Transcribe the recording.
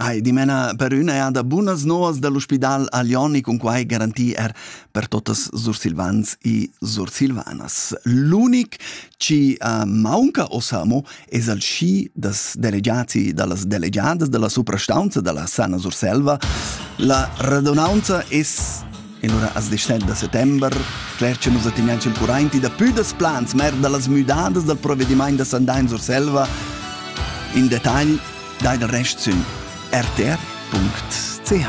Ai, dimena per üna eada bunas novas dal ospidal Alioni cun quai garanti er per totas sursilvans e sursilvanas. L'unic chi uh, maunca os amo es al schi das delegiati da las delegiadas da la suprastaunza da la Sana Surselva. La radunaunza es E lura as descend da settember cler cha nus attignan ch'el currainti da pü das plans mer da las müdadas dal provedimaint da sandà in Surselva. In detagl dai dal rest sün rtr.ch.